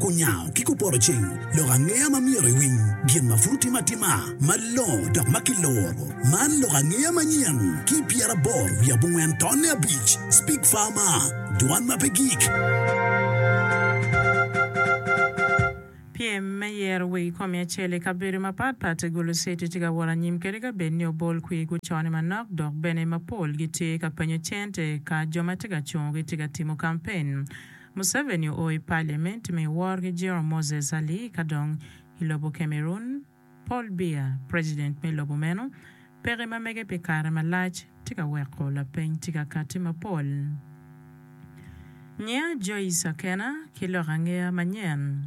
Kunyango ki kupoto ceng lok angeya ma myero iwiny, gin ma pud otime atima malongo dok ma kiloro. Man lok angeya manyen ki i pyeraboro wiye abongwen tonne abic, Speak Farmer, Dwan ma pe gik. Pyem me yero weg komi acel i kabedo mapatpat i Gulu City tye ka wot anyim kadi ka bed ni obol kwir gucone manok dok bene mapol gitye ka penyo cente ka jo ma tye ka cungo gitye ka timo kampen. Museveni oo i Parliament me wor ki jiro Moses Ali ka dong i lobo Cameroon, Paul Biya, president me lobo meno, peke ma mege pi kare malac tye ka weko lapeny tye ka kati mapol. Nyiya Joyce Akena ki lok angeya manyen.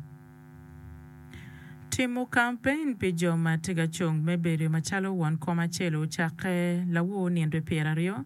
Timo kampein pi jo ma tye ka cung me bedo macalo won kom acel ocakke lawo nino pyeraryo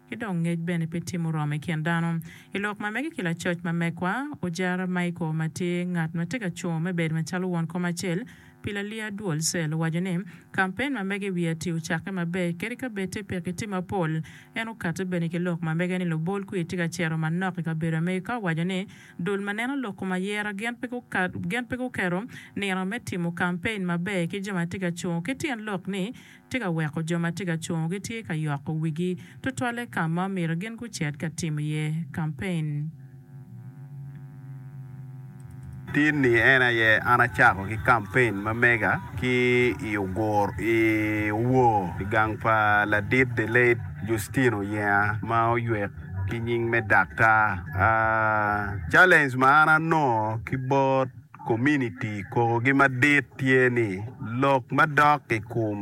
ki dong ngec bene pe tye muromo i kin dano. I lok ma mege ki lacoc ma megwa, Ojara Michael ma tye ngat ma tye ka cungo me bedo macalo won kom acel pi Lalia Duol Cell owaco ni, Kampen ma mege i wi ati ocakke maber kadi ka bed tye pekki tye mapol. En okatte bene ki lok ma mege ni lubol kwir tye ka cito manok i kabedo Amerika owaco ni, Dul ma neno lok kom ayera gin pe guketo nino me timo kampen maber ki jo ma tye ka cungo ki tyen lok ni tye ka weko jo ma tye ka cungo gitye ka yoko wigi tutwalle ka ma omyero gin gucit ka timo iye kampen. Tit-ni en aye an acako ki kampen ma mega ki i Ogur i Owor i gang pa ladit The Late Justine Oyenga ma oywek ki nying me Daktar. Challenge ma an anongo ki bot Kominiti kokogi madit tye ni lok madok i kom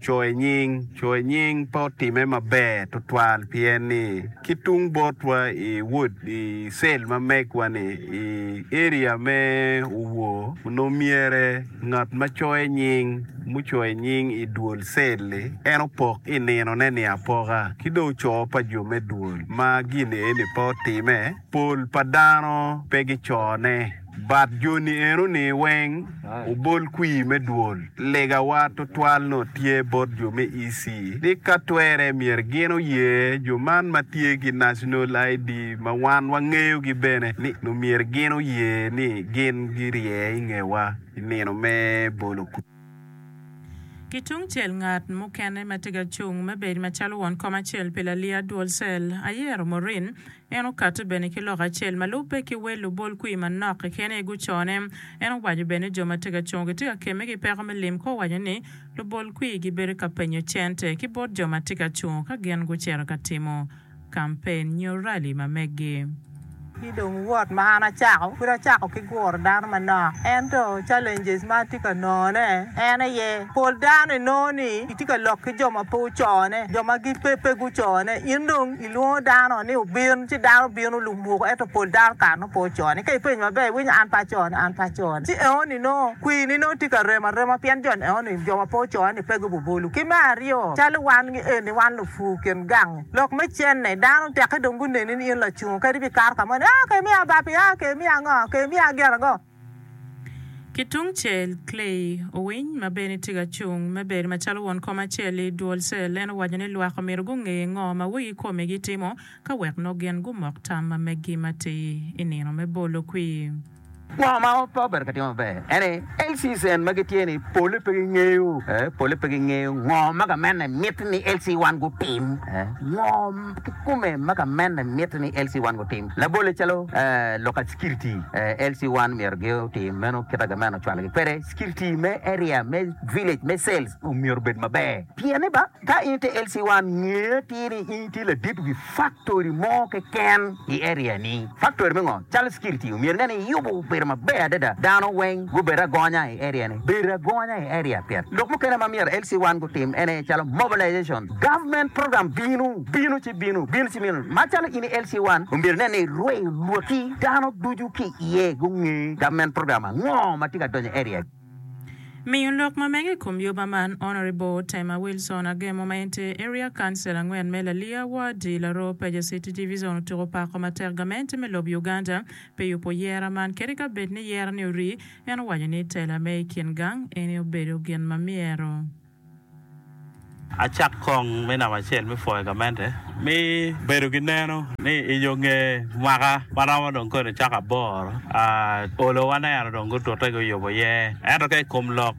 coyo nying. Coyo nying pe otimme maber tutwal pien ni ki tung botwa i wod i cell ma megwa ni i area me Owor onongo myere ngat ma coyo nying mucoyo nying i dwol cell ni en opok i nino ne ni apoka ki dong ocoo pa jo me dwol ma gin eni pe otimme pol pa dano pe gicone. Bat joni enoni weng obol kwir me dwol. Legawa twatwal nongo tye bot jo me EC ni ka twere myero gin oye jo man ma tye ki National ID ma wan wangeyogi bene ni nongo myero gin oye ni gin girye i ngewa i nino me bolo kwir. Ki tung cel ngat mukene ma tye ka cung me bedo macalo won kom acel pi laliya dwol cell, ayero Maureen, En okato bene ki lok acel ma lubbe ki wel lubol kwir manok keken aye gucone. En owaco bene ni jo ma tye ka cungo gitye ka kemme ki peko me lim ka owaco ni lubol kwir gibedo ka penyo cente ki bot jo ma tye ka cungo ka gin gucito ka timo kampen nyo rali ma meggi. Ki dong wot ma an acako, pud acako ki guro dano manok. Ento challenges ma atye ka nongone en aye, pol dano inongo ni itye ka lok ki jo ma pe ocone, jo ma gin pe pe gucone, in dong. Kilwongo dano ni obin, ci dano bino lumwoko, ento pol dano kare nongo pe ocone. Ka ipenyo maber, iwinyo an pe acone, an pe acone. Ci enoni nongo kwiri-ni nongo tye ka rem arema pien jo enoni, jo ma pe ocone-ni pe gububolo. Ki me aryo, calo wan ki eni, wan lupur kin gangi. Lok me cente, dano tekke dong guneni ni in lacungo, kadi bikato ka mo ni, Aa, kemiya bapi, aa, kemiya ango, kemiya gin ango. Ki tungcel, Clay Owiny ma bene tye ka cung me bedo macalo won kom acel i duol cell, en owaco ni lwak omyero gunge ngo ma wigi kome gitimo ka wek nongo gin gumok tam ma meggi matir i nino me bolo kwir. Ngo ma pe obedo ka timo maber en ni LC-cell magi tye ni pole pe gingeyo, pole pe gingeyo ngo ma gamente miti ni LC-1 gutim. Ngo. Kikome ma ka mene mitte ni LC1 gutim labolle calo local security, LC1 myero gi otim meno kit aga meno ocwalo gi kwede. Security me area, me village, me cells myero obed maber pien ni ba ka in ite LC1 nge atir ni in itye ladit wi factory mo keken i area ni. Factory me ngo? Calo security omyero inge ni iyubo obedo maber adada dano weng gubed agonya i area ni. Bedo agonya i area pien lok mukene ma myero LC1 gutim en aye calo mobilization, Government program binu, binu ci binu, binu ci binu. Macalo in i LC one, omyero inen ni irweyo lwaki dano ducu ki iye gunge government program ango ma tye ka donyo i area gi. Miyo lok ma mege i kom yoba man, Honourable Tema Wilson Agemo ma en tye Area Council angwen me Lalia ward i Laroo Peja City Division otuko pako matek gamente me lobo Uganda pi yubo yera man kadi ka bed ni yera ni orii. En owaco ni tela me i kin gang eni obedo gin ma myero. Acak kong me namba acel me pwoyo gamente me bedo ki neno ni i yo nge mwaka ma romo dong kodi cok aboro, olo waneno dong gutute guyubo iye. Ento ka i kom lok,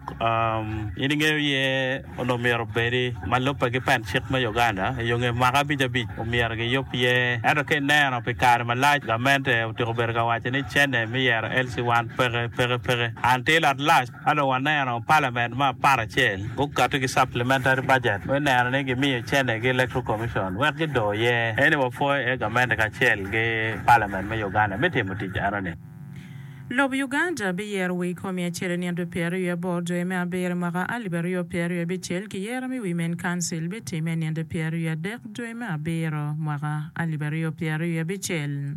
in ingeyo iye onongo myero obedi ma lubbe ki pen cik me Uganda i yo nge mwaka abic abic omyero giyub iye. Ento ka ineno pi kare malac gamente otyeko bedo ka waco ni cene me yero LC1 peke peke peke. An tye lotlac. Ka dong waneno palament me aparacel gukato ki supplementary budget me neno ni gimiyo cente gi Electoral Commission wek gido iye, aye ni wapwoyo iye gamente kacel ki palament me Uganda me timo tic eno ni. Lobo Uganda biyero wi komi acel i nino pyeraryo aboro dwe me abiro i mwaka alip aryo pyeraryo abicel ki yero me wi main council bitimme i nino pyeraryo adek dwe me abiro mwaka alip aryo pyeraryo abicel.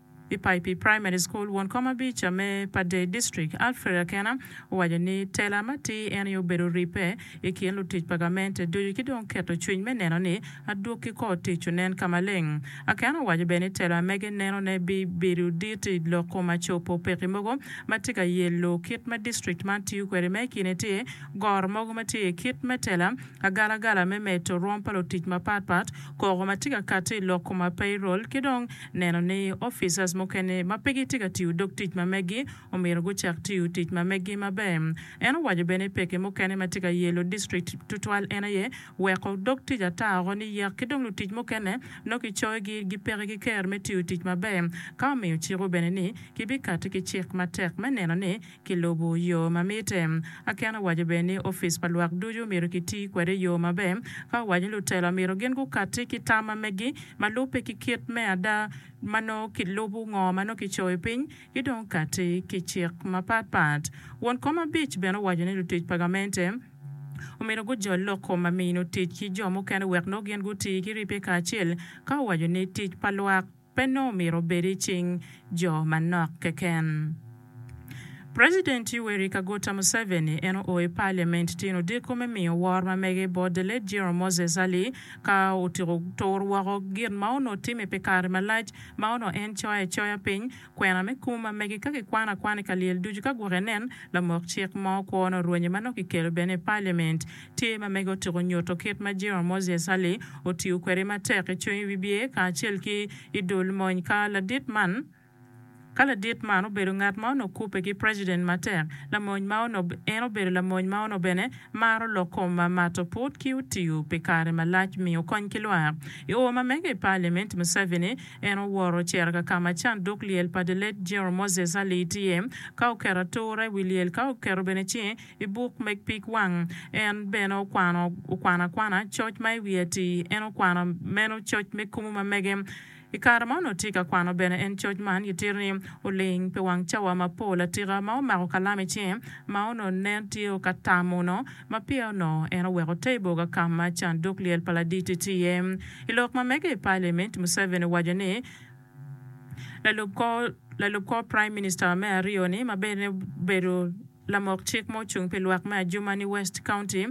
I Paipi Primary School, won kom abica me Padey District, Alfred Akena owaco ni tela matir en aye obedo ribbe i kin lutic pa gamente ducu ki dong keto cwiny me neno ni adwogi ki kor tic onen ka maleng. Akena owaco bene ni tela mege neno ne bi bedo dit i loko ma copo peki mogo ma tye ka yello kit ma district man tiyo kwede ma i kine tye goro mogo ma tye kit me tela agalagala me medo rwom pa lutic mapat pat, koko ma tye ka kati i loko ma payroll ki dong neno ni officers mukene ma pe gitye ka tiyo dog tic ma megi omyero gucak tiyo tic ma megi maber. En owaco bene ni pekki mukene ma tye ka yelo district tutwal en aye weko dog tic ata oko ni yek ki dong lutic mukene nongo kicoyogi gi peke ki ker me tiyo tic maber ka omiyo ciko bene ni kibikati ki cik matek me neno ni ki lubu yo ma mitte. Aken owaco bene ni ofice pa lwak ducu omyero ki ti kwede i yo maber ka owaco ni lutelo myero gin gu katti ki tama megi ma lubbe ki kit me ada ma nongo ki lubu ngo ma nongo ki coyo piny ki dong katti ki cik ma pat pat. Won kom abic bene owaco ni lutic pa gamente omyero gu jol lok kom ma mino tic ki jo mukene wek nongo gin gu ti ki ribbe kacel ka owaco ni tic pa lwak pe nongo omyero obed i cing jo manok keken. President Yoweri Kaguta Museveni en oo i Parliament tyen odiko me miyo wor ma mege bot the late General Moses Ali ka otyeko tur woko gin ma onongo timme pi kare malac ma onongo en coyo acoya piny kwena me kum ma mege ka kikwano akwana i kalyel ducu ka gwok enen lamok cik mo kwo onongo rwenye ma nongo kikelo bene i Parliament Tye ma mege otyeko nyuto kit ma Jehova Moses Sali otiyo kwede matek i cwiny wibye kacel ki i dul mony ka ladit man. Ka ladit man obedo ngat ma onongo kubbe ki preciden matek, lamony ma ono, en obedo lamony ma ono bene maro lok kom ma mato put ki otiyo pi kare malac miyo kony ki lwak. I oo ma mege i Paliament, Museveni en oworo ocito ka ka ma canduk lyel pa the late General Moses Sali tye ka oketo atura i wi lyel ka oketo bene ci I buk meg pig wang, en bene okwano okwano akwana coc ma i wiye ati. En okwano meno coc me kumu ma mege. I kare ma onongo tye ka kwano bene en coc man, gitito ni oling pi wang cawa mapol atika ma omako kalam i cinge ma onongo nen tye ka tamo onongo ma pire onongo en oweko te i boga ka ma canduk lyel pa laditi tye iye. I lok ma mege i Palimint, Museveni owaco ni, Lalub kor Prime Minister me aryo ni ma bene obedo lamok cik ma ocung pi lwak me Adjumani West County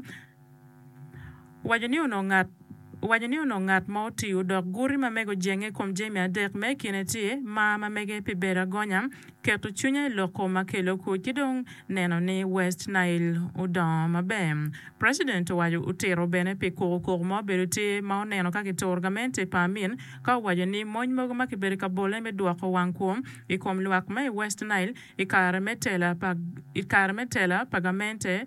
owaco ni onongo ngat ma otiyo dok guti ma mege ojenge i kom jami adek ma i kine tye mar ma mege pi bedo agonya, keto cwinya i loko ma kelo kwo ki dong neno ni West Nile odongo maber. President owaco otito bene pi kokokoko ma obedo tye ma oneno ka kituro gamente pa Amin ka owaco ni mony mogo ma kibedo ka bole me dwoko wang kwo i kom lwak ma i West Nile i kare me tela pa gamente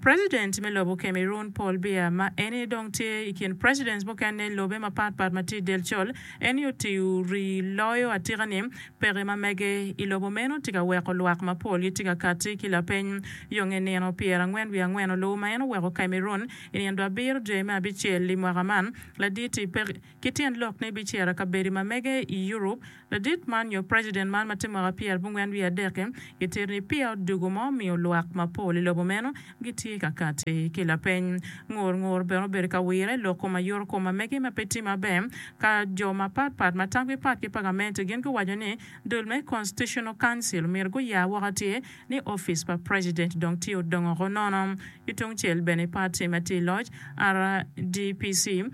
President me lobo Cameroon Paul Biya ma eni dong tye i kin presidents mukene i lobe mapat pat ma tye i del col, eni otiyo rii loyo atika ni peke ma mege i lobo meno tye ka weko lwak mapol gitye ka kati ki lapeny yo nge nino pyera ngwen wiye angwen olubo ma en oweko Cameroon i nino abiro dye me abicel i mwaka man. Laditi peke. Ki tyen lok ni biciro kabedi ma mege i Europe, ladit man nyo president man ma tye mwaka pyer abongwen wiye adek-ki, gitito ni peya odugo ma omiyo lwak mapol i lobo meno gitye ka kati ki lapeny. Ngur ngur bene obedo ka wire lok kom ayuto kom ma mege ma pe tye maber, ka jo mapat pat ma tamgi pat ki pa gamente gin guwaco ni dul me Constitutional Council omyero guya woko atir ni office pa president dong tye odongo ko nono. Ki tungcel bene party ma tye i loc, RDPC,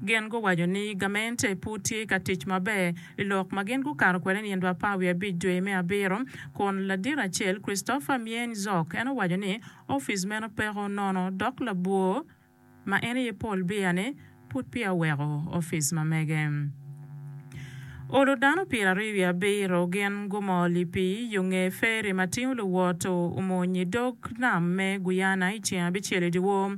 Gin guwaco ni gamente pud tye ka tic maber i lok ma gin gukato kwede nino apar wiye abic dwe me abiro, kun ladit acel, Christopher Myeny Zok, en owaco ni opic meno peko nono dok labwor ma en aye Paul Biya ni pud peya oweko opic ma mege. Olo dano pyeraryo wiye abiro gin gumol i pii yo nge feri ma tingo luwot omony i dog nam me Guyana i ceng abicel i dyewor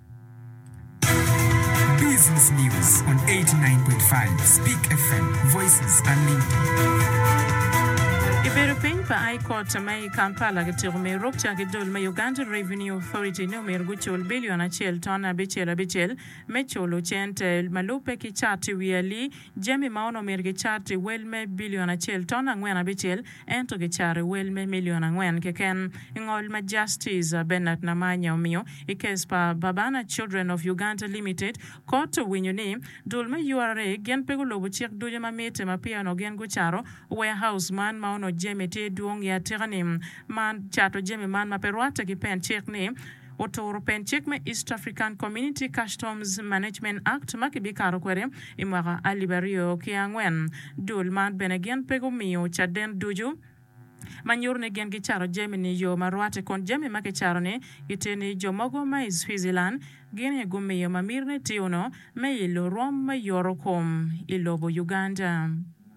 Business News on 89.5 Speak FM, Voices Unlimited. I bedo piny pa High Court me i Kampala, kitiko me ruk ca ki dul me Uganda Revenue Authority ni omyero gucul billion acel ton abicel abicel me culo cente ma lubbe ki cat i wi ali Jami ma onongo myero kicar tye wel me bilion acel ton angwen abicel, ento kicaro wel me milion angwen keken. I ngol ma Justice Bernard Namanya omiyo i kes pa Babana Children of Uganda Limited, Kot owinyo ni dul me ura gin pe gulubo cik ducu ma mitte ma peya onongo gin gucaro warehouse man ma onongo jami tye dwong i atika-ni man cato jami man ma pe rwatte ki pen cik ni oturo pen cik me East African Community Customs Management Act ma kibikato kwede i mwaka alip aryo ki angwen. Dul man bene gin pe gumiyo caden ducu ma nyuto ni gin gicato jami-ni yo ma rwatte kun jami ma kicato-ni gitye ni jo mogo ma i Switzerland gin aye gumiyo ma mitine tye onongo me ilo rwom me yorokom i lobo Uganda.